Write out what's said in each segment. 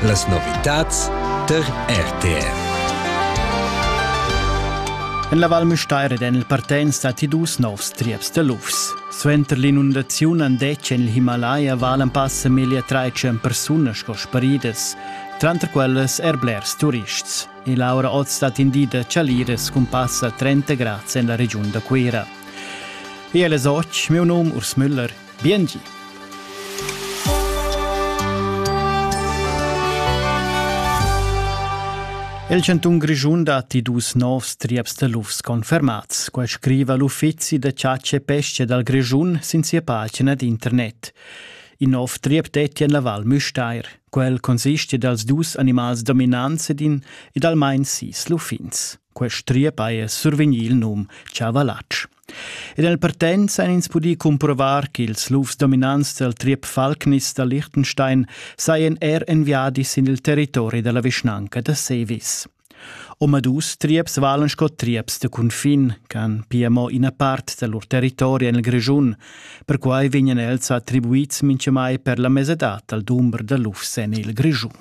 Las novitads tar RTR. En la Val Müstair ed en il Partenz datti dus novs trieps da lufs. Suenter l'inundaziun han detg en il Himalaya valen passa meglio tre persone sco sparidas, tranter quellas er blers turists. E Laura Oz stat in di da Chaliras cun passa 30 grads en la regiun da Cuira. Ella soc, meu num Urs Müller Biengi! Il chantun Grischun datti dus novs trieps da lufs confermats. Quai scriva l'uffizi da chatscha e pesca dal Grischun sin sia pagina d'internet. In nov triep detti en la Val Müstair. Quel consiste dals dus animals dominants ed, in, ed almain sis luffins. Quest triep haja survegnì il num Chavallatsch. Ed nel partenza han ins pudì cumprovar ch'ils lufs dominants dal triep Falknis da Liechtenstein sajan er enviadis sin il territori da la vischnanca da Sevis. Omadus trieps valan sco trieps da cunfin ch'han pia mo ina part da lur territori en il Grischun, perquai vegnan els attribuids mintgamai per la mesadad dal dumber da lufs en il Grischun.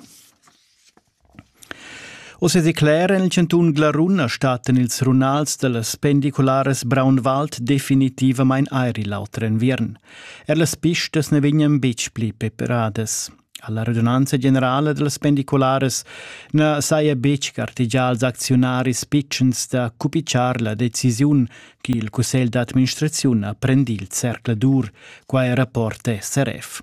Ussa declera il chantun Glarun a statten ils runals dellas pendicularas Braunwald definitivamain airi l'auter enviern. Er las pistas ne vegnan betg pli preparadas. Alla radunanza generala dellas pendicularas na saja betg gartegià als acziunaris pitschens da cupicciar la decisiun che il cussegl d'administraziun ha prendì il zercladur, quai rapporta SRF.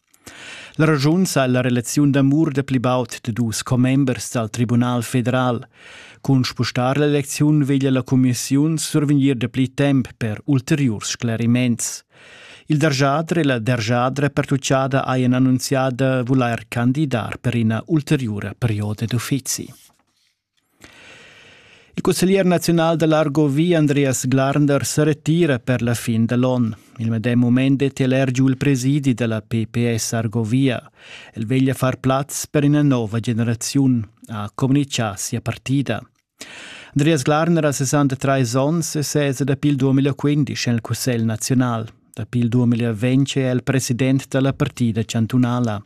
La raschun sa la relaziun d'amur da pli baud da dus commembers dal Tribunal federal. Cun spustar l'elecziun veglia la cumissiun survegnir dapli temp per ulteriurs scleriments. Il derjadre e la derjadra pertuccada hajan annunzià da vulair candidar per ina ulteriura perioda d'uffizi. Il cusseglier naziunal da l'Argovì Andreas Glarnder sa retira per la fin da l'onn. Il medem mument è el er giu il presidi da la PPS Argovia. El veglia far plaz per ina nova generaziun, ha communitgà sia partida. Andreas Glarner ha 63 onns e sesa dapi il 2015 en il Cussegl naziunal. Dapi il 2020 è el president da la partida chantunala.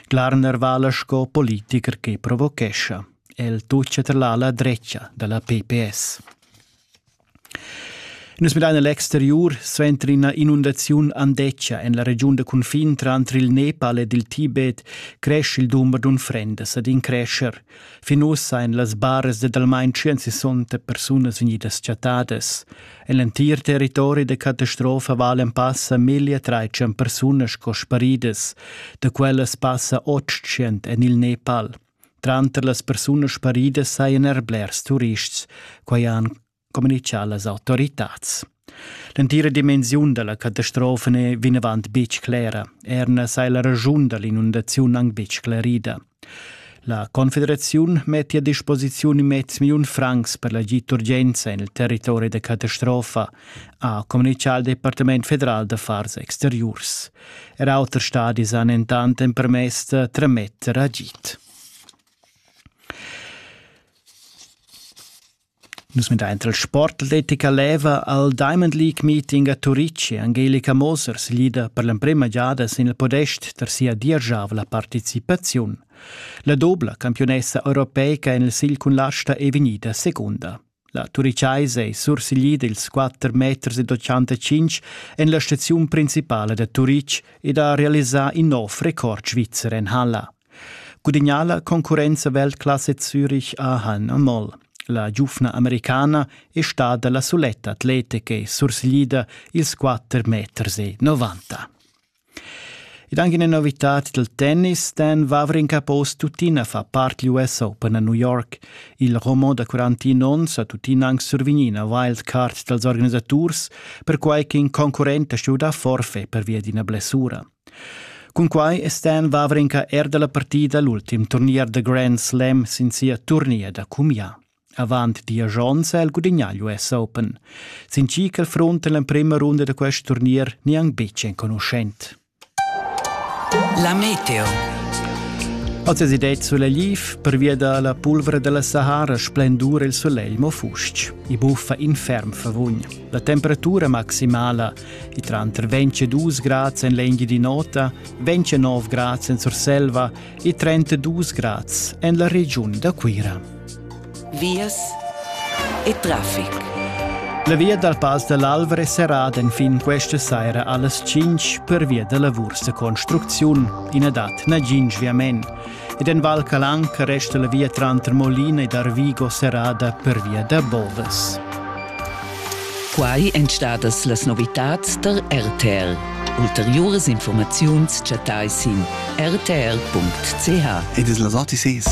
Klarner vala sco politiker che provochescha. El tuccia tra l'ala drecha della PPS. Nus midain l'exteriur suenter ina inundaziun andeccia en la regiun da confin tranter il Nepal ed il Tibet cresce il dumber d'unfrendas ed in crescer. Fin ussa ein las baras de almain 160 persunas vegnidas chattadas. En l'entir territori da catastrofa valen passa 1300 persunas sco sparidas, da quellas passa 800 en il Nepal. Tranter las persunas sparidas sajan er blers turists, quai han communitgà las autoritads. L'entira dimensiun da la catastrofa n'è vinavant betg clera. Er na sai la raschun da l'inundaziun anc betg sclerida. La Confederaziun metti a disposiziun mez milliun francs per l'agid d'urgenza en il territori da catastrofa, ha communitgà il Departament federal d'affars exteriurs. Er auter stadis han entant empermess da trametter agid. Nus medaint al sport atletica leva al Diamond League meeting a Turitg Angelika Moser siglida per l'emprema giada sin il podest tar sia dieschavla participaziun. La dobla campiunessa europeica en il sigl cun l'asta è vegnida secunda. La turichaisa è sursiglida ils 4 meters ed 85 en la staziun principala da Turitg ed ha realisà in nov record svizzer en halla. Gudagnà la concurrenza Weltklasse Zürich a Hanna Moll. La giufna americana è stada la suletta atleta che sursiglida ils 4 meters e 90. Ed anche una novità del tennis, Dan Vavrin Capos tuttina fa part degli US Open a New York. Il roman da 41 onns ha tuttina anche survignuto una wildcard dals organisators, perquai che in concurrente ha stuto forfè per via di una blessura. Cunquai è Stan Wawrinka er da la partida l'ultim turnier da Grand Slam sin sia turnier da cumià. Avant diesch onns ha el gudignà l'US Open. Sin chi ch'el frunta en l'emprima runda da quest turnier ni anc betg enconuschent. La meteo. Oz es ideet sulegliv, pervia da la pulvra da la Sahara splendura il sulegl mo fustg. I buffa infern favugn. La temperatura maximala I tranter 22 grads en l'Engiadin'Ota, 29 grads en Surselva e 32 grads en la regiun da Cuira. Vias e traffic. La via dal Pass dell'Alvra è serrada fin questa sera alle 5 per via della Vursa Construziun. In dat nagin sviament. ed en Val Calanca resta la via tranter Molina ed Arvigo serrada pervia da bodas. Quai èn stadas las novitads tar RTL. Ulteriuras informaziuns chattai sin rtl.ch. Ed es las OTCs.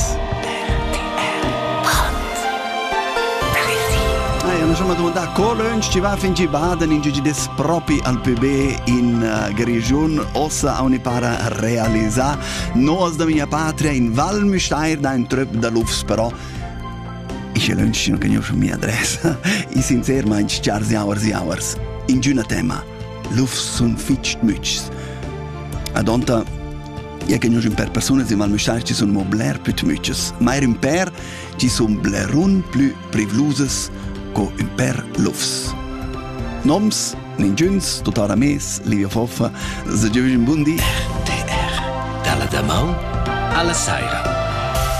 mi sono domandato Cologne ci va fin ci baden in gigi des propri al PB in uh, Grigiun ossa a unipara realizzare Nos da mia patria in Val Müstair da in tröp da lufs però ich lönchino che gnio mia adressa i sincermaing chars jauers jauers in giüna tema lufs sun fitg mütschs adonta Ja che gnus in per persunas in Val Müstair ci sun mo bler plü tmütschs, meir in per ci sun blerun plü privlusas co ün per lufs. Noms, ninguns, tuttora mes, Livia Foffa, se giovin bundi. RTR, dalla damaun alla saira.